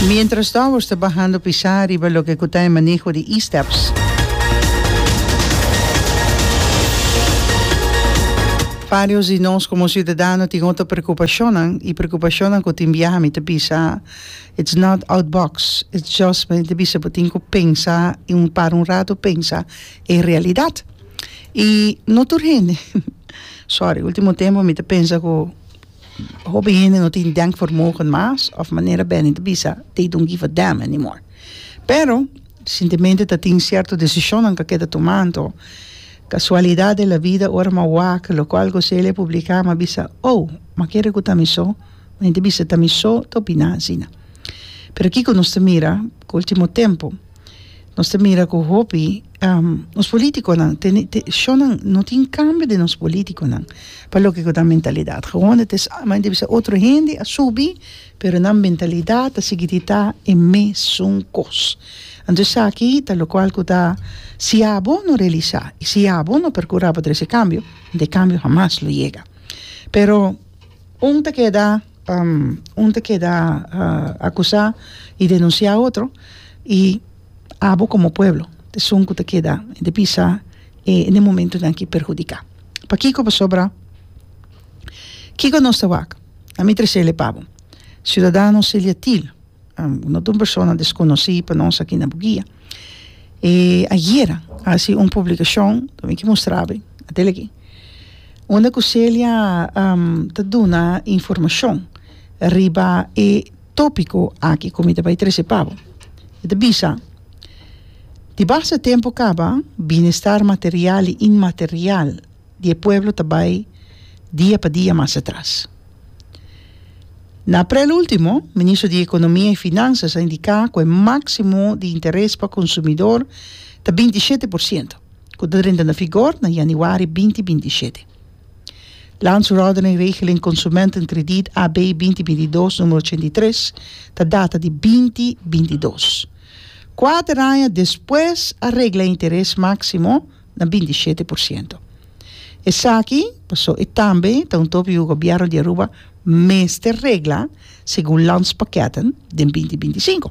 Mientras towers ta bahando pisá riba loke ku ta e maneho di e-steps. Varios di nos komo siudadano tin otro prekupashonnan i prekupashonnan ku tin biaha mi ta bisa it's not out box it's just mi ta bisa bo tin ku pensa i un para un rato pensa e realidat i no tur hende sorry ultimo tempo mi ta pensa ku Hopi hende no tin denkvermogen mas of manera beni ta bisa they don't give a damn anymore. Pero resientemente ta tin cierto decisionnan k'a keda tuma anto casualidad de la vida ora m'a wak loco algo seli a publica m'a bisa oh m'a kere cu ta mi so mi ta bisa ta mi so ta opina asina. Pero kico nos ta mira cu ultimo tempo nos ta mira cu hopi. Nos politiconan tene te shonnan no tin cambio den nos politiconan pa loke cu ta mentalidad gawon it is mandi bisa otro hende a subi pero nan mentalidad ta sigui di ta e mesun cos anto esaki ta locual cu ta si abo no realisa y si abo no percura pa trece cambio ente cambio hamas lo yega pero un ta keda un ta keda acusa y denuncia otro y abo komo pueblo esun ku ta keda di bisa e ne momentunan ki perhudiká pakiko pasobra kiko nos ta wak a mi tresé le pa bo Ciudadano Celia Thiel no ta un persona deskonosí pa nos aki na Buguia e ayera a hasi un publikashon ta miki mustra bo atel aki unda ku Celia ta duna informashon riba e Tópiko aki ku mi ta bai trese pa bo e ta bisa, Di base tempu kaba binestar material i inmaterial di e pueblo ta bai dia pa dia mas atras. Na aprel último, Ministro di Ekonomia i Finansas a indiká ku e máksimo di interes pa konsumidor ta binti shete por siento, ku ta drenta na vigor na yanüari binti binti shete. Landsverordening Regeling Consumentenkrediet AB binti binti dos numero ochenta i tres ta data di binti binti dos. Kuater aña despues a regla e interes máksimo na binti shete por siento. Esaki pasó e tambe ta un topi ku Gobièrnu di Aruba mester regla segun Landspakketten den binti binti sinku.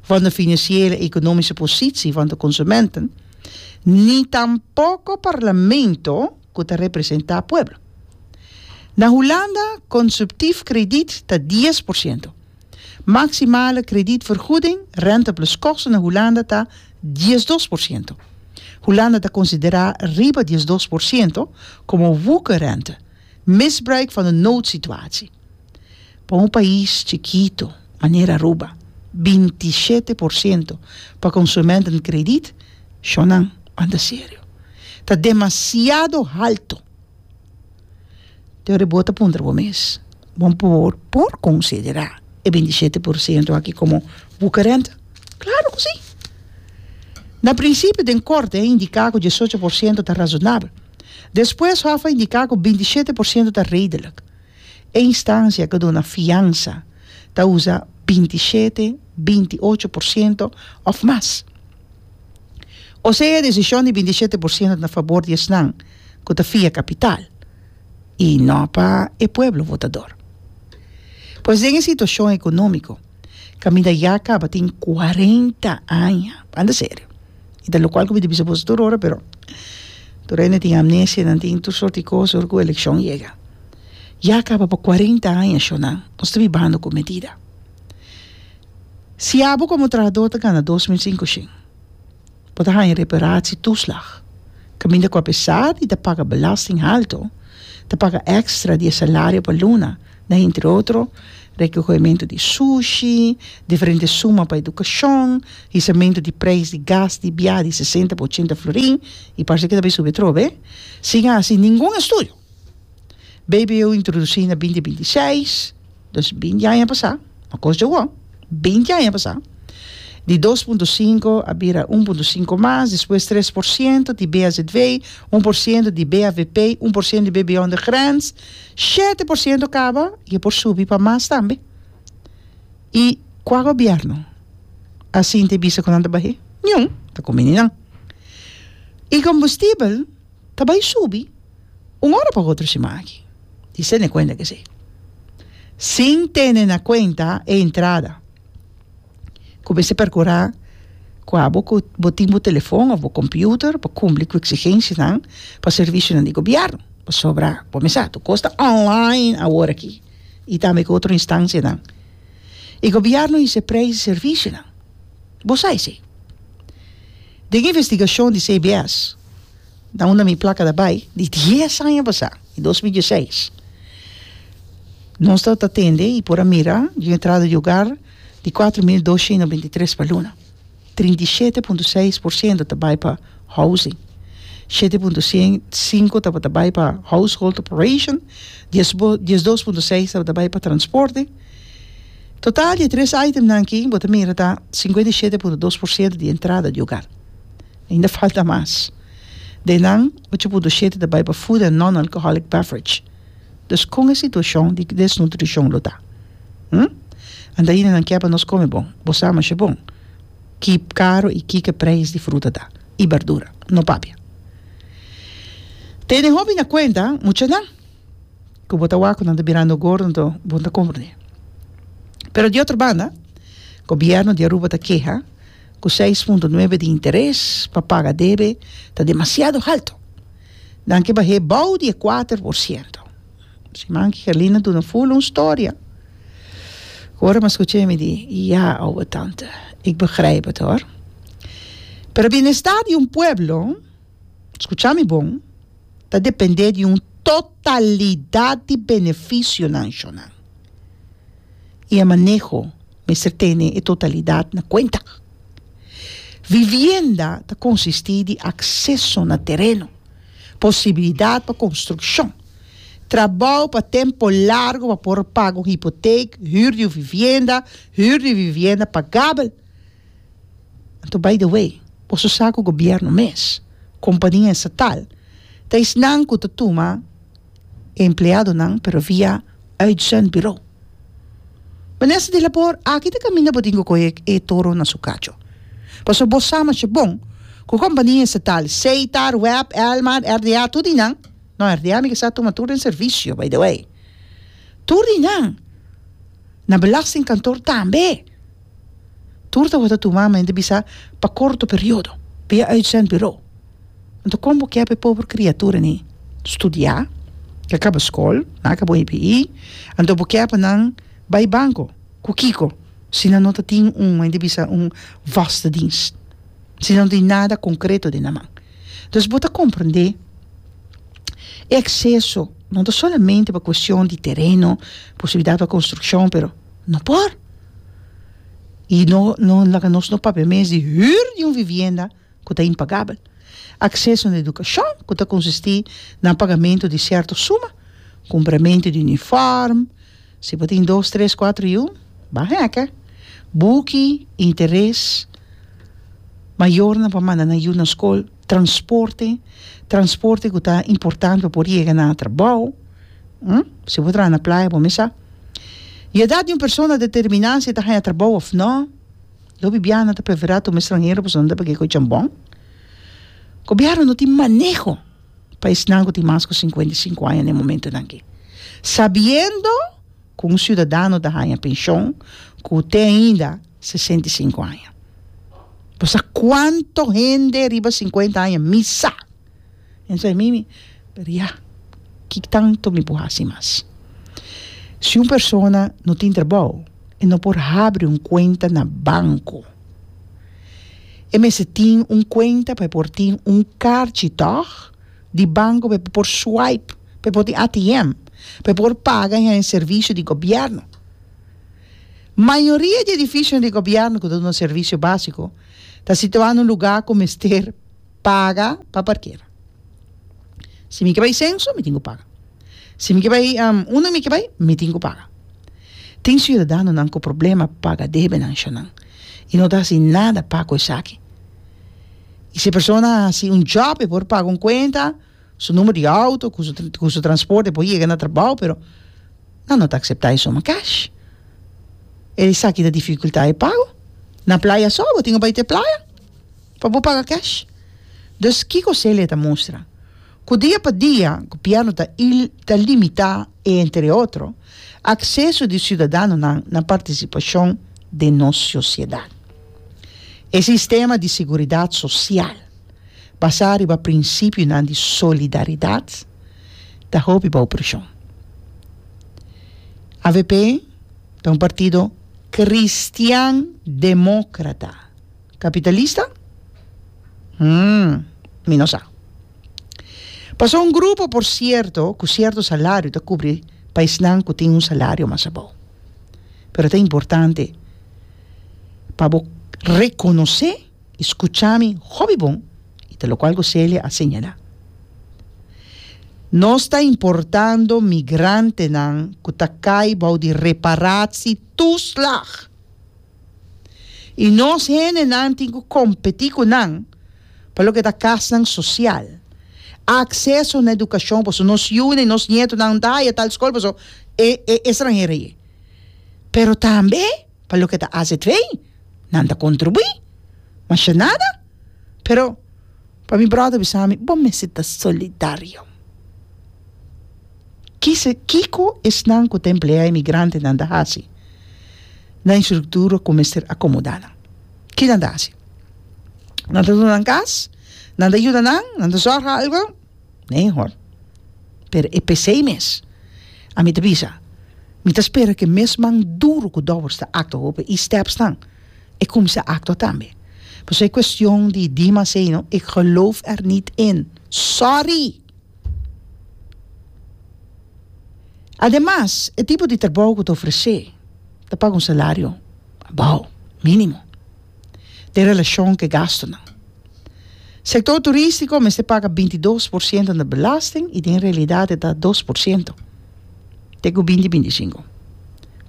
van de financiële i economische positie van de consumenten, ni tampoco Parlamento cu ta representa pueblo. Na Hulanda consuptief krediet ta dies por ciento. Maximale kredietvergoeding, rente plus kosten, na Hulanda ta diesdos por ciento. Hulanda ta considera riba diesdos por ciento como woekerrente, misbruik van de noodsituatie. Pa un pais chikitu manera Aruba, binti i shete por siento pa konsumentnan kredit, shon nan banda serio, ta demasiado haltu. Te ora bo ta puntra bo mes, Bo por por konsiderá e binti i shete por siento aki komo bukerenta? Klaru ku sí! Na prinsipio den korte a indiká ku diesocho por siento ta razonabel. Despues hòf a indiká ku binti i shete por siento ta redelik. E instancia cu duna fiansa ta usa binti shete, binti ocho por ciento of mas. Osea e decision di binti shete por ciento ta na fabor di esnan cu ta fia capital y no pa e pueblo votador. Pues den e situacion economico. Caminda ya a caba tin cuarenta aña, banda serio. Y ta locual cu mi ta bisa boso tur ora, pero tur hende tin amnesia, nan tin tur soort di cos ora cu eleccion yega. Ya a caba pa cuarenta aña, Shona, nos ta bibando cu medida. Si abo como trahador ta gana dos mil cinco shin. por ta haña reparatie toeslag. Caminda cu a pesar di ta paga belasting alto, ta paga extra di e salario pa luna na entre otro, recohemento di sushi, diferente suma pa educacion, hisamento di prijs di gas di biaha di sesenta pa ochenta florin y parse cu ta bay subi atrobe, sin a haci ningun estudio. BBO introducí na binti binti seis, dos binti aña pasá, no kos dje wò, binti aña pasá, di dos punto sinku a bira un punto sinku mas, despues tres por siento di BHZW, un por siento di BHVP, un por siento di BBO on the grens, shete por siento kaba i e por subi pa mas tambe. I kua gobièrnu a sinti bisa ku nan ta bah'é? Niun, ta kuminí nan. I kombustibel. ta bai subi un ora pa otro siman aki. Di sende kuenta ke esei. Sin tene na kuenta e entrada ku mester perkurá ku abo ku bo tin bo telefòn òf bo kòmpiuter pa kumpli ku eksigensianan pa servisionan di gobièrnu. Pasobra bo mes sa tur kos ta online awor aki i tambe ku otro instansianan. E gobièrnu hise preis di servisionan. Bo sa esei. Den investigashon di CBS na unda mi plaka ta bai di dies aña pasá, di dos mil diesseis, nos ta ta tende i por a mira yu entrada di ogar di kuater mil doshientu binti tres pa luna. Trinta i shete punto seis por siento ta bai pa housing, shete punto sien sinku tabata bai pa household operation, diesbo diesdos punto seis tabata bai pa transporte, Total di e tres itemnan aki bo ta mira ta sinkuenta i shete punto dos por siento di entrada di ogar. Ainda falta mas. Den nan, ocho punto shete ta bai pa food and non-alcoholic beverage. Dus kon e situashon di desnutrishon lo ta? Hm? Antaina nan ke pa nos kome bon? Bo sa masha bon ki karo i kiko e preis di fruta ta i bardura. No papia. Tene hopi na kuenta muchanan. ku bo ta wak ku nan ta birando gordo bo ta kompra ne pero di otro banda gobièrnu di Aruba ta keha ku seis punto nuebe di interes pa paga debe ta demasiado halto nan ke bah'é bou di e kuater por siento siman ke Herlina duna ful un storia ku ora mi a skucha mi di ya ouwe tante ik begrijp het hoor pero bienestar di un pueblo skucha mi bon. ta dependé di un totalidat di beneficio nan shona. Y e maneho mester tene e totalidat na cuenta. Vivienda ta consisti di acceso na tereno, posibilidad pa construccion, trabao pa tempo largo pa por paga un hypotheek, huur di un vivienda, huur di un vivienda pagabel, Anto by the way, boso sa ku gobièrnu mes, kompania estatal, ta esnan ku ta tuma e empleadonan pero via uitzendburo. Minister di Labor, aki ta kaminda bo tin ku kohe e toro na su kacho. Pasobra bo sa masha bon ku kompania estatal, Seitar, Web, Elmar, RDA, tur di nan, no RDA mi ke sa tuma tur den servisio by the way, tur di nan na belastingkantoor tambe. Tur tabata tuma ma hende bisa pa korto periodo. Pia uitzendburo. Anto kon bo kep e pober kriatura ni studia, ke kaba skol, nan ke bo hpi, anto bo kep nan bai banko, ku kiko, si nan no ta tin un, hende bisa, un vaste dienst, si nan no tin nada konkreto den nan man. Dus bo ta komprende e akseso no ta solamente pa kuestion di tereno, posibilidat pa konstrukshon, pero. No por. I no no laga nos no papia mes di hür di un vivienda ku ta impagabel. Akseso na edukashon ku ta konsistí na pagamentu di sierto suma, kumpramentu di unifòrm, si bo tin dos, tres, kuater yu, ba hèkè, buki, interes, mayornan pa manda nan yu na skol. Transporte, transporte ku ta importante pa por yega na trabou, si bo traha na playa bo mesa, di edat di un persona determiná si e ta haña trabou òf nò, lo bibiaha nan ta preferá tuma estranhero pasobra nan ta pag'é ku e chambon, gobièrnu no tin maneho pa esnan ku tin mas ku sinkuenta i sinku aña na e momentunan akí, sabiendo. ku un siudadano ta haña penshon ku te ainda sesenta i sinku aña. Bo sa kuantu hende riba sinkuenta aña mi sa? Mester mi mi pediá ki tantu mi por hasi mas. Si un persona no tin trabou, e no por habri un kuenta na banku. E mester tin un kuenta pa e por tin un karchi tòg di banku pa e por swipe. pa e por tin ATM, pa e por paga hen e servisio di gobièrnu. Mayoria di edifisionan di gobièrnu ku ta duna servisio básiko ta situá na un lugá ku mester paga pa parkera. Si mi ke bai senso, mi tin ku paga. Si mi ke bai unda mi ke bai, mi tin ku paga. Tin siudadanonan ku problema pa paga debenan ashanan i no ta hasi nada pa ku esaki. I si e persona a hasi un jòb pa e por paga un kuenta, su numero di auto cu su cu su transporte por yega na trabao pero nan no ta acepta eso ma cash e esaki ta dificulta e pago na playa so bo tin cu bay te playa pa bo paga cash dus kico Celia ta mustra cu dia pa dia gobieno ta il ta limita entre otro acceso di ciudadanonan na participacion den nos sociedad e sistema di seguridad social. basá riba prinsipionan di solidaridat, ta hopi bou preshon. Avp ta un partido kristian demókrata. Kapitalista? Hm, mi no sa. Pasobra un grupo, por sierto, ku sierto salario ta kubri pa esnan ku tin un salario mas abou. Pero ta importante pa bo rekonosé. Scucha mi, hopi bon, y ta locual cu Celia a señala. Nos ta importando migrantenan cu ta cay bao di reparatie toeslag. Y nos hendenan tin cu competi cu nan pa loke ta casnan social, acceso na educacion, pasobra nos yunan y nos nietonan no ta haya tal scol pasobra e e extranhero aye. Pero tambe. pa loke ta hasi et rey, nan ta contribui, masha nada, pero pa mi brother bisa mi bo mester ta solidario, kisa kiko esnan ku ta emplea emigrantenan ta hasi na e structura ku mester acomoda nan, kinan ta hasi? Nan ta duna nan kas? Nan ta yuda nan? Nan ta zorga algu? Nee hoor. Pero e pesey mes. A mi ta bisa, mi ta spera cu e mes man duro cu Dowers ta actua hopi e stepsnan, e cuminsa actua tambe. Pasobra e cuestion di Dimas ey no, ik geloof er niet in. Sorry! Ademas, e tipo di trabou cu ta ofrece, ta paga un salario bou, minimo. den relashon ku e gastunan. Sektor turístiko mester paga binti dos por siento na belasting i den realidat e ta dos por siento te ku binti binti sinku.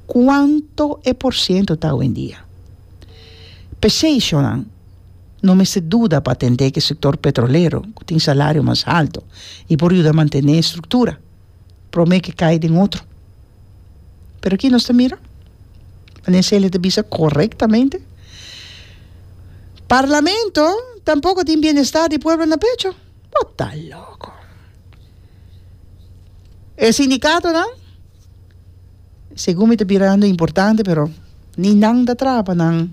Kuantu e por siento ta awendia? P'esei shonnan no mester duda pa atendé ku e sektor petrolero ku tin salario mas haltu i por yuda mantené e struktura. prome ke kai den otro pero aki nos ta mira wende Celia ta bisa correctamente parlamento tampoco tin bienestar di pueblo na pecho bo ta loco e sindicatonan segun mi ta birando importante pero ni nan ta traha pa nan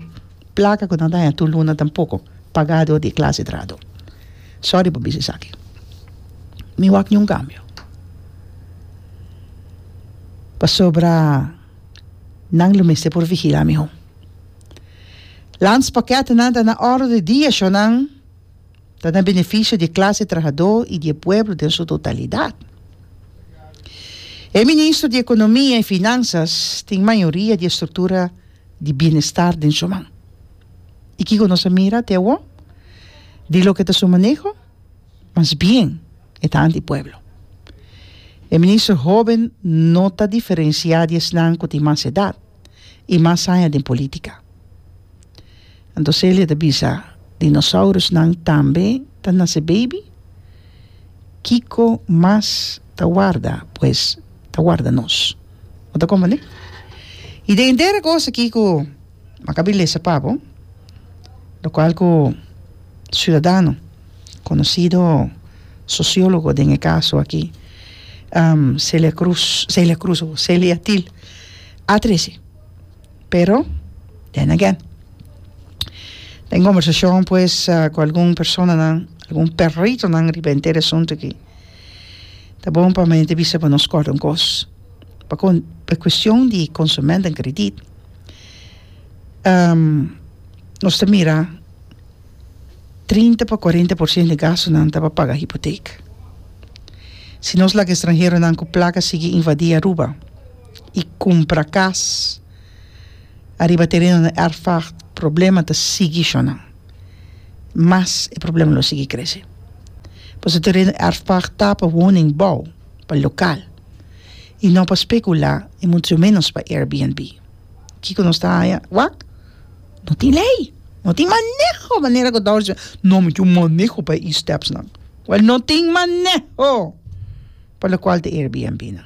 Plaka ku no daña tur luna tampoko pagá dor di e klase drado. Sòri pa bisa esaki. Mi wak niun kambio. Pasobra nan lo mester por vigilá mihó. Lans pakètnan ta na òrdu di dia shonnan ta na benefisio di e klase trahadó i di e pueblo den su totalidat. E ministro di Ekonomia i Finansas tin mayoria di e struktura. di bienestar den su man. I kiko nos a mira te awor di loke ta su maneho? Mas bien e ta anti pueblo. E minister hoben no ta diferensiá di esnan ku tin mas edat i mas aña den polítika. Anto Celia ta bisa, Dinosaurusnan tambe ta nase beibi? Kiko mas ta warda pues ta warda nos. Bo ta komprendé? I den entero e kos akí ku mi a kabe lesa pa bo, lokual ku siudadano konosido sosiólogo den e kaso akí, Celia Cruz, Celia Cruz, Celia Thiel a trese. Pero, den again, den e kòmbersashon pues ku algun personanan, algun peritonan riba e entere asuntu akí. Ta bon pa mente bisa pa nos kòrda un kos. Pa kon e kuestion di konsument den kredit, nos ta mira trinta pa kuarenta por ciento di gastunan ta pa paga hipotek. Si nos laga estranheronan ku plaka sigui invadí Aruba i kumpra kas ariba terenonan, erfak, problema ta sigui shò nan. mas e problema lo sigui krese. Pasobra e tereno erfpag ta pa woningbou, pa lokal, i no pa spekulá i mucho ménos pa Airbnb. Kiko nos ta haña? Wak, no tin lei, no tin maneho manera ku Dorsey no mi kin maneho pa e stepsnan. Wèl, no tin maneho pa lokual di Airbnb nan.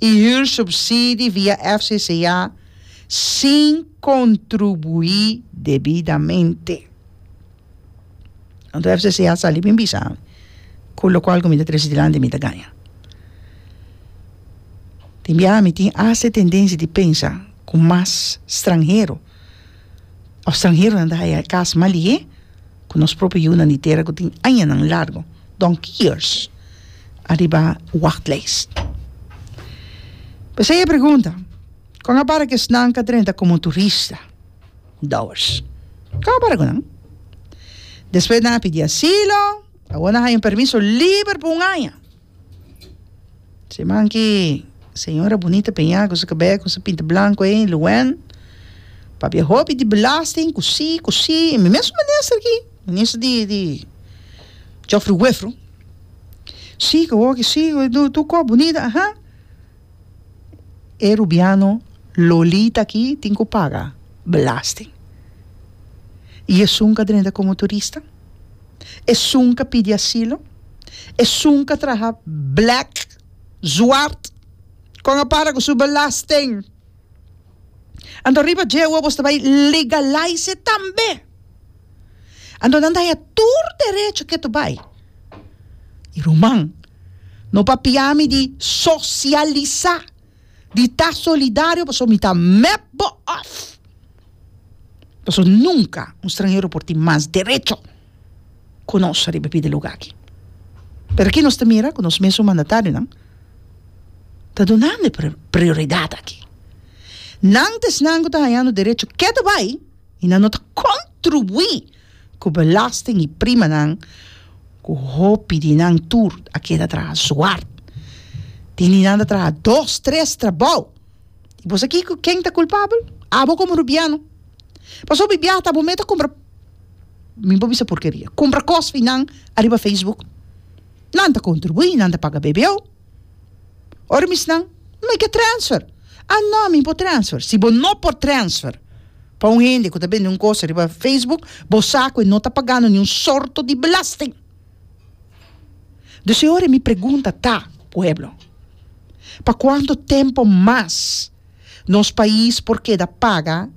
y huur subsidi via FCCA sin contrubui debidamente. Anto FCCA sali bin bisa mi cu locual cu mi ta trece dilanti mi ta gaña. Tin biaha mi tin asta e tendencia di pensa cu mas stranhero. Of stranheronan ta haya e kas mas lihé ku nos propio yunan di tera ku tin añanan largu, donkey years, ariba wachtlijst. P'esei e pregunta, kon a para ku esnan ka drenta komo turista? Douwers. Kon a para ku nan? Despues nan a pidi asilo, awor nan haya un permiso liber pa un aña. Siman ki señora Bunita Peña cu su cabello cu su pinta blanco ey, Luen, papia hopi di belasting, cu si, cu si, y mi mes un minister aki, minister di, di Geoffrey Wefro, si cu awor cu si, tu cu Bunita, aja. e rubiano Lolita aki tin cu paga belasting. Y esun ca drenta como turista? Esun ca pidi asilo? Esun ca traha black, zwart? Con a para cu su belasting? Anto riba dje awo bos ta bai legalize tambe. Anto nan ta haña tur derecho ke to bai. I ruman, no papia mi di sosialisá, di ta solidario pasobra mi ta mep bo òf. Pasobra nunka un stranhero por tin mas derecho. ku nos riba e pidi luga aki. Pero aki nos ta mira ku nos mesun mandatarionan ta dunando e prioridat aki. Nan ta esnan ku ta hañando derecho ketu bai i nan no ta kontribuí ku belasting i primanan ku hopi di nan tur a keda traha zuward. Tin di nan ta traha dos, tres trabou. I bo sa kiko? Ken ta kulpabel? Abo komo rubiano. Pasobra mi biaha ta bo meta kumpra, mi bo bisa porkeria, kumpra kos fi nan ariba facebook. Nan ta kontribuí, nan ta paga BBO. Ora mi snan, make a transfer. Ah no, mi por transfer. Si bo no por transfer pa un hende ku ta bende un kos riba facebook, bo sa ku e no ta pagando niun sorto di belasting. Dus e ora mi pregunta ta, pueblo, pa kuantu tempu mas nos pais por keda paga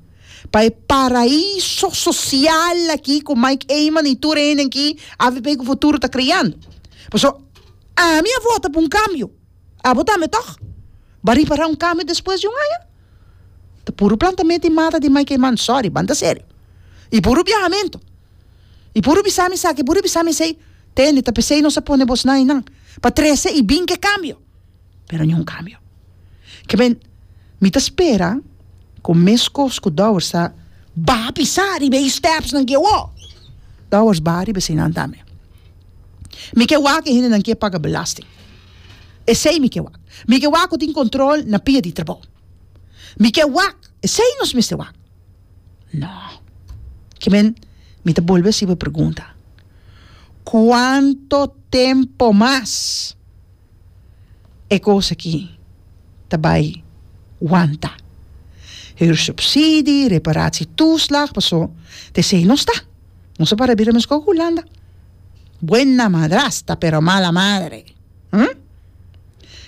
pa e paraiso sosial aki ku Mike Eman i tur e hende aki a viví ku futuro ta kreando? Pasobra ami a vota pa un kambio, abo tambe tòg? Bo a ripará un kambio despues di un aña? Ta puru plantamenta i mata di Mike Eman, sòri, banda serio, i puru biahamentu. I puru bisa mi esaki, puru bisa mi esei, tende, ta p'esei nos a pone bos na einan, pa trese i bin ke kambio. Pero niun kambio. Ke men, mi ta spera ku meskos ku Dowers ta ba pisa riba e stèpsnan ke wou, Dowers ba riba eseinan tambe. Mi ke wak e hendenan ke paga belasting. Esei mi ke wak. Mi ke wak ku tin kontrol na pia di trabou. Mi ke wak, esei nos mester wak. No. Kiben, mi ta bolbe hasi bo e pregunta. Kuantu tempu mas e kos aki ta bai wanta? Huursubsidie, reparatietoeslag, paso tesei nos ta. Nos a para bira mescor cu Hulanda. Buena madrasta, pero mala madre. Hm?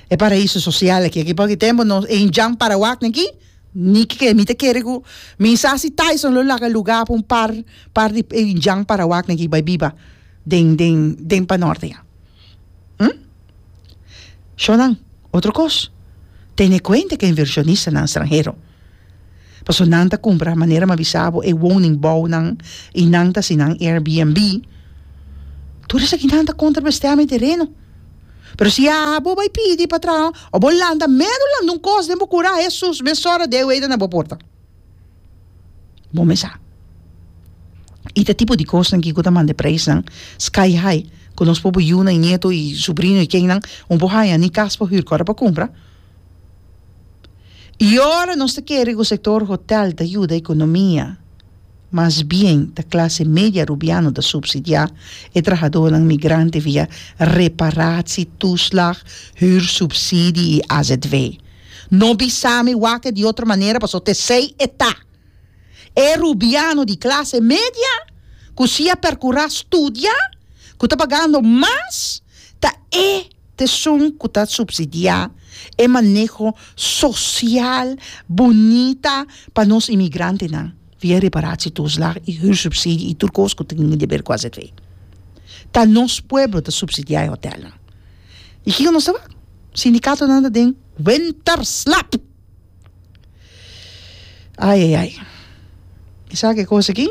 E paraíso social aki, aki pa hopi tempu nos e hincham parawak na aquí. Nicky, ke mi ta kere ku mi sa si Tyson lo laga lugá pa un par par di Jan Parawak aki bai biba den den den Panòrte ya. Hm? Shò nan, otro kos, tene kuenta ke invershonistanan stranhero. Pasobra nan ta kumpra, manera mi a bisa bo, e woningbouwnan i nan ta hasi nan Airbnb. Tur esaki nan ta kontra bestea mi tereno. Pero si haha bo bai pidi pa traha o bo lanta meru lanta un kos den bo kura Hesus mesora de wei ta na bo porta. Bo me sa i ta tipo di kosnan aki ku ta manda e preisnan sky high ku nos pobe yunan i nieto i subrino i kennan un po haña ni kas pa hür ku ora pa kumpra. I ora nos ta kere ku sektor hotel ta yuda ekonomia, mas bien ta klase media Rubiano ta supsidiá e trahadonan migrante via reparatsi, tuslag, hürsubsidie i azw. No bisa mi wak e di otro manera paso te esei e ta. E Rubiano di klase media ku si a perkurá studia, ku ta pagando mas, ta e. Teson ku ta supsidiá e maneho sosial bunita pa nos imigrantenan via reparatietuslag i huursubsidie i tur kos ku tin di ber ku azv. Ta nos pueblo ta supsidiá e hotèlnan. I kiko nos ta wak? Sindikatonan ta den wenterslap! Ai ai ai mi sa ke kos aki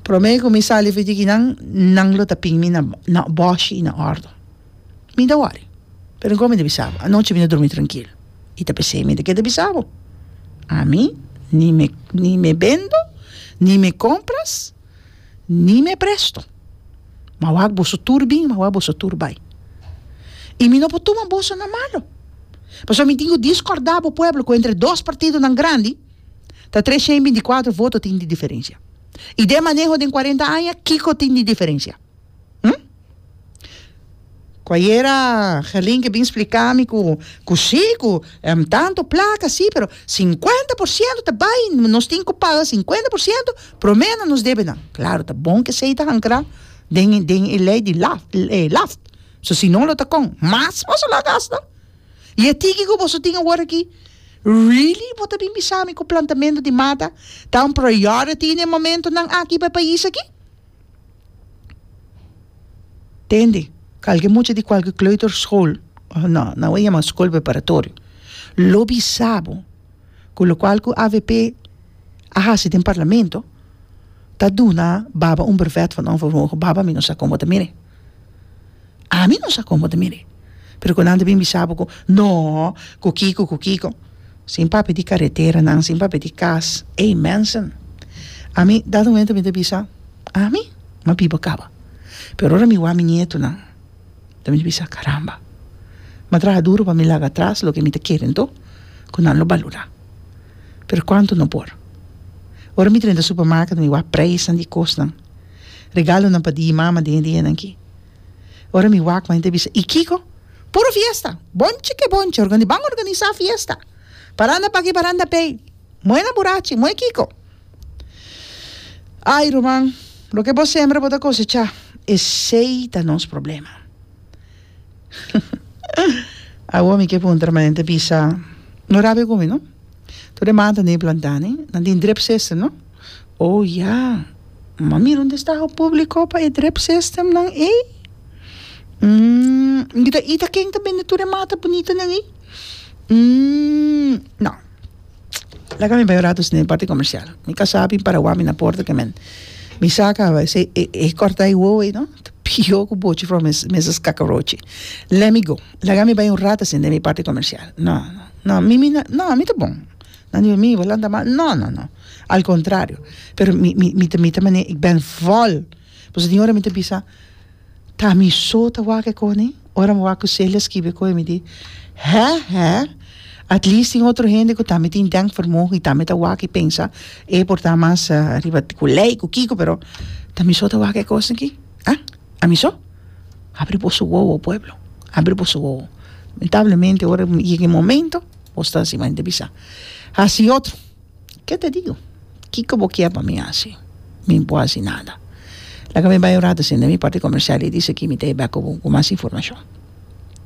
prome ku mi sali fiti ki nan nan lo ta pin mi na na boshi i na ordo mi ta wòri pero nko mi ta bisa bo anochi mi ta drumi trankil i ta p'esei mi ta keda bisa bo ami ni me ni me bendo ni me kompras ni me presto. Ma wak boso tur bin, ma wak boso tur bai. I mi no por tuma boso na malo. Pasobra mi tin ku diskòrdá bo pueblo ku entre dos partidonan grandi ta tres shen binti kuatro voto tin di diferensia. I den maneho den kuarenta aña kiko tin di diferensia? Hm? Ku ayera Gerlinke bin splika mi ku ku sí, ku em tanto plaka sí, pero sinkuenta por siento ta bai, nos tin ku paga sinkuenta por siento promé na nos debenan. Klaro, ta bon ku esei ta hankra den e den e lei di laf e laf. So si no lo ta kon mas boso lo a gasta. I e tiki ku boso tin awor aki, really bo ta bin bisa mi ku plantamentu di mata ta un priority den e momentunan aki pa e pais aki? Tende kalke mucha di kalke kleuter school no nan wou yama school preparatorio lo bisabo ku lokual ku avp a hasi den parlamento ta duna baba un brevet for non baba mi no sa komo ta mire. Ami no sa como ta mir'e, pero cu nan ta bin bisa bo cu no, cu kico, cu kico, sin papia di careteranan, sin papia di cas, ey mensen, ami dat momento mi ta bisa, ami m'a biba caba, pero ora mi wak mi nietonan, dan mi ta bisa, caramba, m'a traha duro pa mi laga atras loke mi ta kere anto, cu nan lo balura, pero cuanto no por, ora mi drenta supermarket mi wak prijsnan di cosnan. Regalonan pa di i mama den e dianan ki. Ora mi wak mei ta bisa, I kiko? Puro fiesta! Bonchi ke bonchi! Organi ban organisa fiesta! Paranda paki paranda pei! Moe na burachi! Moe kiko! Ai ruman, loke bo sembra bo ta kosecha. Esei ta nos problema. Awor mi ke puntra mei ta bisa, No rabia ku mi no. Tur e manta nan e planta ni. Nan tin drip system no. O ya! Ma mira un destaho públiko pa e drip systemnan ei. Umm, mi ta ita ken ta bende tur e mata bunitanan ei? Umm, nò. Laga mi bai un ratu sende parti komershial. Mi kasá bin Paraguai, mi na por ta kemen. Mi saka esei, e, e kòrta ei wowo ei no, ta pihó ku bochi for mes, mesa skakarochi. Lèt mi go. Laga mi bai un ratu sende mi parti komershial. Nò, nò, nò, mi, mi na, nò, mi ta bon. Nan di pa mi, bo lanta mal? No, no, no. Al kontrario. Pero mi, mi, mi ta, mi ta manera, ik ben vòl. Pasobra tin ora mi ta bisa, ta mi so ta wak e kos nei? Ora mi wak ku Celia skibi e kos ei, mi di, hè, hè, at least tin otro hende ku tambe tin denkvermogen i tambe ta wak i pensa e por ta mas riba ku lei, ku kiko, pero ta mi so ta wak e kos aki? Hè? A mi so? Abri boso wowo, pueblo. Abri boso wowo. Lamentablemente, ora mi yega e momento Bo sta encima hende bisa, Haci otro. Ke ta digo? Kiko bo kier pa mi haci? Mi bo haci nada. Laga mi bai un rato sin den mi parti comercial y di esaki mi ta e bek cu mas informacion.